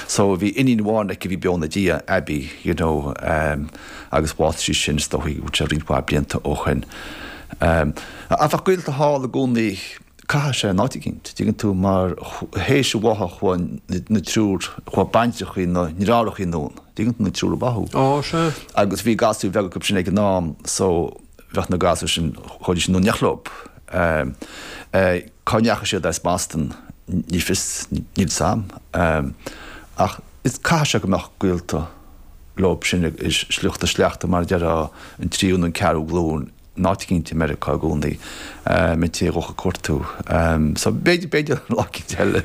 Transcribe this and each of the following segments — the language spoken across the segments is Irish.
So bhí iníon amháin aici a bhí beo ina diaidh, Abby, you know, ehm, agus bhásaigh sí sin, is dócha go bhfuil sé roinnt mhaith blianta ó shoin. Ehm, ach bheadh gaolta thall i gcónaí, caithfidh sé, in áit eicínt, tuigeann tú, mar théis an bháthadh chuaigh na, na triúr, chuaigh baintreachaí na ndeartháireachaí anonn, tuigeann tú, na triúr a báthadh. Ó, sea. Agus bhí gasúir bheaga acub sin ag an am, so. bheadh na gasúir sin chomh dise in éineacht leo. Cá ndeachaigh siad as Boston? Ní fios, níl 'sam ach is caithfidh sé go mbeadh gaolta leo sin ag sliocht a sleachta mar a déarfá an tríú nó an ceathrú glúin in áit éicínt i Meiriceá i gcónaí, mé taobh amuigh ag cuartú. So b'fhéidir lá éicínt eile.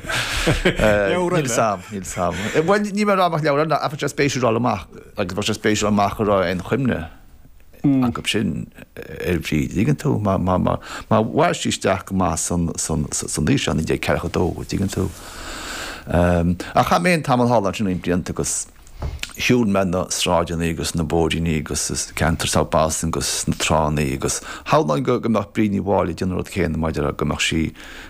Leabhar eile? Níl 'sam, níl 'sam. Bhuel níl mé ag rá go mbeadh leabhar eile ná, ach bheadh sé spéisiúil a fháil amach agus bheadh sé spéisiúil a fháil amach an raibh aon chuimhne. acu sin ar Bhríd. An dtuigeann tú? Mar mhair sí isteach go maith san aois seo, 1942, an dtuigeann tú? Ach chaith mé féin tamall thall ansin roinnt blianta agus shiúil mé na sráideanna agus na bóithríní agus ceantar South Boston agus na tránna agus shamhlóinn go mbeadh Bríd Ní Mháille ag déanamh an rud céanna mar a deirim go mbeadh sí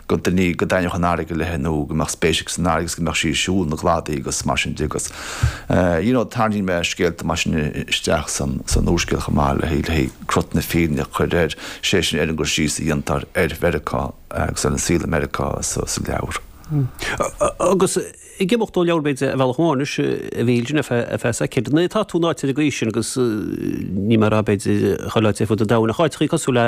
go dtaitneodh an fharraige léithe nó go mbeadh spéis aici san fharraige agus go mbeadh sí ag siúl na gcladaí agus mar sin de agus you know tarraingíonn mé scéalta mar sin isteach san úrscéal chomh maith le haghaidh crot na fírinne a chur air, is é sin ar an gcur síos a dhéantar ar Mheiriceá agus ar an saol i Meiriceá sa leabhar. Agus. Ag imeacht ó leabhar b'fhéidir ar bhealach amháin anois a Mhichíl díreach ar feadh feadh soicind. Agus nuair atá tú in áit ar an gcaoi sin agus níl mé ag rá b'fhéidir chuile áit ar fud an domhain ach áiteachaí cosúil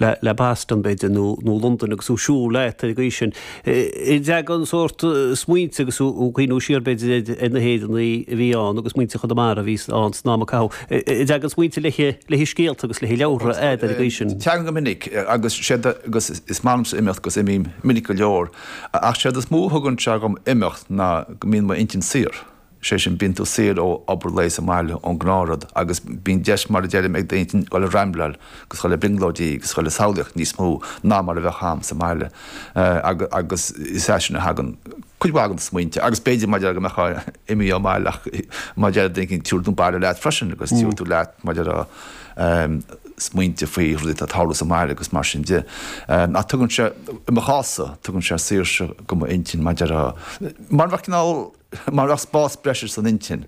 le le Boston b'fhéidir nó nó Londain agus thú ag siúl leat ar an gcaoi sin. An dteagann sórt smaointe agus thú thú ag cuimhneamh siar b'fhéidir ar ar na hÉireannaí a bhí ann agus muintir Chonamara a bhí ann san am a caitheadh an dteagann smaointe le haghaidh le haghaidh scéalta agus le haghaidh leabhra agat ar an gcaoi sin? Teagann go minic agus sé agus is maith liomsa imeacht agus imím minic go leor. Ach séard is mó a thugann sé dhom imeacht ná go mbíonn m'intinn saor. Sé sin, bíonn tú saor ó obair lae sa mbaile, ón ngnáthrud, agus bíonn deis, mar a deirim, ag d'intinn dul ag rambleáil, agus dul ag brionglóidí, agus dul ag samhlaíocht níos mó ná mar a bheadh a'm sa mbaile. Agus is as sin a thagann cuid mhaith de na smaointe, agus b'fhéidir, mar a deirim, go mbeifeá imithe ón mbaile, ach mar a deir duine éigin, tabharfaidh tú an baile leat freisin, agus tabharfaidh tú leat, mar a deir. smaointe faoi rudaí atá ag tarlú sa mbaile agus mar sin de. Ach tugann sé, i mo chás-sa, tugann sé saoirse do m'intinn mar a déarfá, mar a bheadh cineál, mar a bheadh spás breise san intinn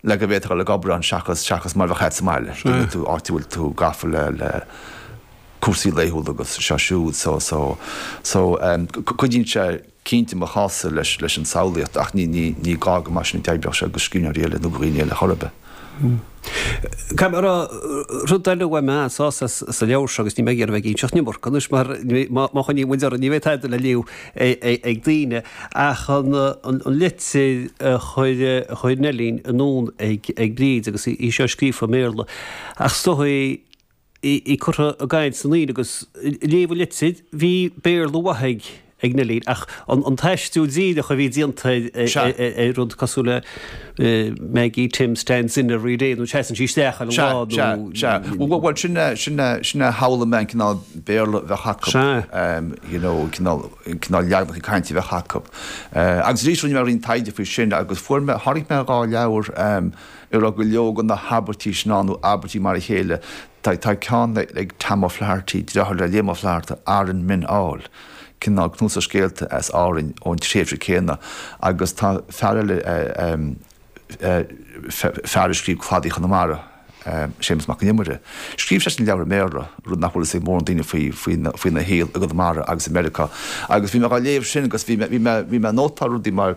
le go bhféadfá a bheith ag obair ann seachas, seachas mar a bheadh a't sa mbaile, cé go bhfuil tú, áit a bhfuil tú gafa le, le cúrsaí laethúla agus seo siúd. So, so, so, cuidíonn sé. Cinnte, mo chás-sa leis an tsamhlaíocht, ach ní gá gur mar sin a d'oibreodh sé do scríbhneoirí eile nó do dhaoine eile chor ar bith. Caithfidh mé a rá, rud eile a bhain mé an-sásamh as sa leabhar seo, agus níl mé ag iarraidh a bheith ag inseacht an iomarca anois, mar má choinníonn muid orainn, ní bheidh tada le léamh ag daoine, ach an litir a chuir Neillín anonn ag Bríd, agus í seo scríofa i mBéarla, ach stoitheadh í. í curtha i gcaint san aoir agus léamh an litir. Bhí Béarla mhaith ag Neillín ach an t-aistriú díreach a bhí déanta ar rud cosúil le Maggie Tim stands in every day nó seasann sí isteach chuile lá nó. Sea, sea. Bhuel sin a, sin a, sin a shamhlaigh mé an cineál Béarla a bheadh acu. Sea. You know an cineál, an cineál leaganacha cainte a bheadh acu. Agus arís rinne mé roinnt taighde faoi sin agus fuair mé, tháinig mé ar dhá leabhar, A raibh go leor de na habairtí sin ann, nó abairtí mar a chéile. Tá ceann ag Tom O'Flaherty, deartháir le Liam Ó Flaithearta, Aranmen All, cineál cnuasach scéalta as Árainn ón tréimhse céanna, agus tá fear eile, fear a scríobh Cladaí Chonamara, Séamus Mac an Iomaire, scríobh seisean leabhar i mBéarla, rud nach bhfuil fhios ag mórán daoine faoina shaol i gConamara agus i Meiriceá. Agus bhí mé á léamh sin agus bhí mé ag nótáil rudaí mar,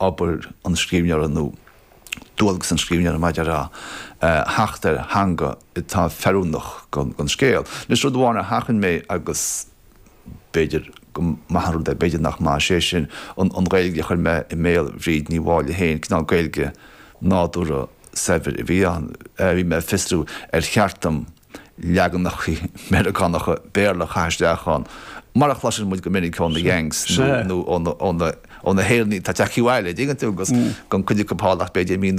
obair an scríbhneora nó dualgas an scríbhneora maidir le theacht ar theanga atá feiliúnach don scéal. Anois, rud amháin a sheachain mé agus b'fhéidir go maith an rud é, b'fhéidir nach maith, sé sin, an Ghaeilge a chuir mé i mbéal Bhríd Ní Mháille féin, cineál Gaeilge nádúrtha saibhir a bhí ann. Bhí mé ag fiosrú ar cheart dom. leaganacha Meiriceánacha Béarla a chaitheamh isteach ann, mar a chloiseann muid go minic ó na Yanks nó ó na hÉireannaigh atá ag teacht abhaile an dtuigeann tú, agus gan cuid acu thall ach b'fhéidir mí nó